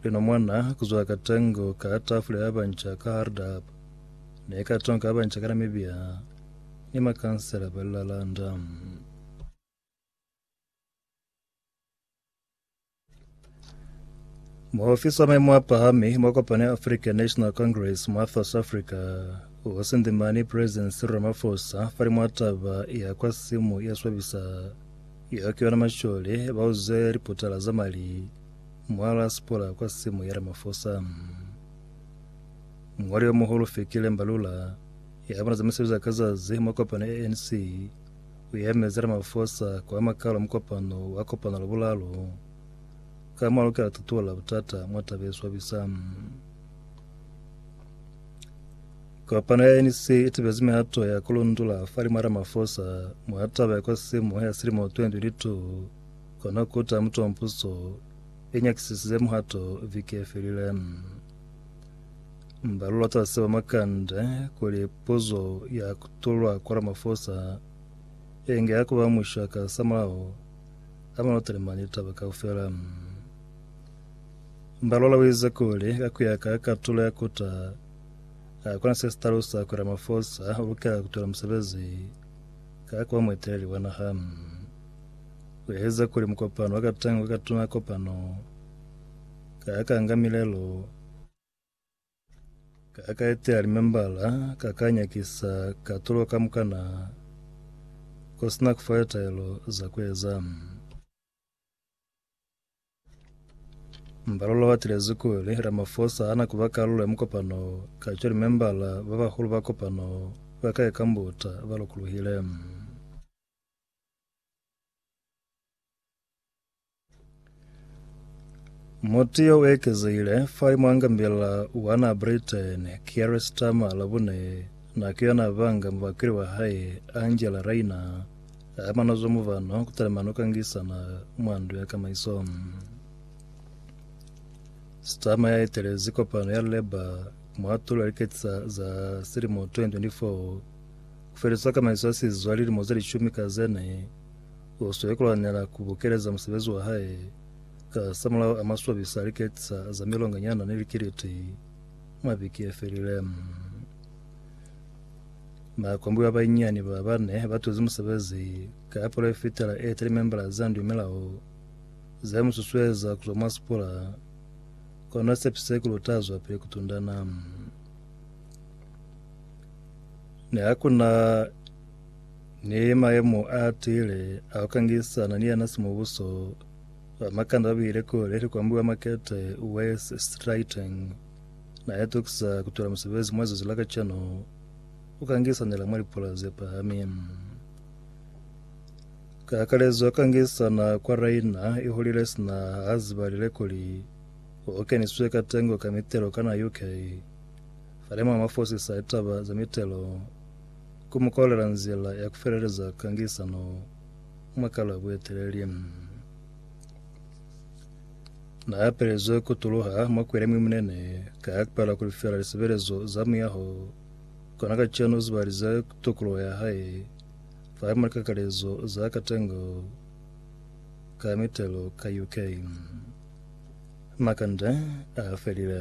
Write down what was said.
Lino mwana kuzwa ka tango ka tafula ya banca ka Hardap ne ka tonka ya banca ka Namibia ni makansela ba lilalanda. Muofisi wa maimo a pahami mwa kopano ya African National Congress mwa South Africa o sindimani President Cyril Ramaphosa fa limwa taba ya kwa simu ya swabisa Ya ki yona Mashole ba uze liputala za mali mwa la Sipora kwa simu ya Ramaphosa. Muñwali yo muhulu Fikile Mbalula ya bona za misebezi ya ka zazi mwa kopano ya ANC u yemezi Ramaphosa ku ama kalo mukopano wa kopano la bulalo ka mwa lukela tutuola butata mwa taba ye swabisa. Kopano ya ANC i tibezi mihato ya ku lundula fa limo Ramaphosa mwa taba ya kwa simo ya silimo 2022, kono kuta mutu wa mpuso i nyakisisize muhato viki ye felile. Mbalula ta seo makande kuli puzo ya kutulwa kwa Ramaphosa inge ya kuba musha ka samulaho a mano talimani taba kaufela. Mbalula wize kuli ka kuya ka katulo ya kuta Ha ku na se si talusa kuli Ramaphosa u lukela ku twela musebezi ka ku ba mueteleli wa naha. U ezize kuli mukopano wa katanga kwa katuna kopano ka ya ka nga milelo ka ya ka etela limembala ka ka nyakisa katulo kamukana ko si na ku fa litaelo za ku eza. Mbalula wa tilezi kuli Ramaphosa hana kuba kalulo ya mukopano wo, kacwale membala ba bahulu ba kopano wo ba ka eka mbuta ba lukuluhile. Mutu yo u ekezehile fai mwa ngambila wa naha Britain, Keir Starmer, Labune, nako yona a banga mubakweli wa hae, Angela Rayner, Ha mano zo muvano, kutali mano kangisana mwa ndu ya kamaiso. Starmer ya etelezi kopano ya Labour mwa tulo ya liketi za, za silimo 2024 kufeliswa kamaiso ya sizwa lilimo ze lishumi ka zene, uswe kulwanela kubukeleza musebezi wa hae ka samulaho a maswabisa a liketi za, za milonganyana ni likiliti mwa biki yefelile. Bakombiwa banyinyani ba bane ba tuzi musebezi ka palo ye fitela e tali membala za ndu milao za mu susueza ku zwa mwa sipula, kono sepise kuli u ta zwapili ku tundana. Ne ha ku na ni mayemo a tiile a ku kangisana ni yena simubuso, bamakanda ba bile kule ni kombiwa makete Wes Streeting. Na ya tokisa ku tola musebezi mwa zuzu la kacenu u ka ngisanela mwa lipula ze pahami. Ka kakalezo ka ngisana kwa raina i hulile sina ha ziba lilekoli o keniswe ka tengo ka mitelo kana UK. Fale mwa mafosisa a litaba za mitelo ku mu kolela nzila ya ku feleleza ka ngisano mwa kala bueteleli. Na yapelezwe ku tuluha mwa kwele mwi munene ka ya kupala ku lifela lisebelezo za muyaho. Kona kacenu uzibalize ku tukuluho ya hae fa ye mwa likakalezo za katengo ka mitelo ka UK. Makande a felile.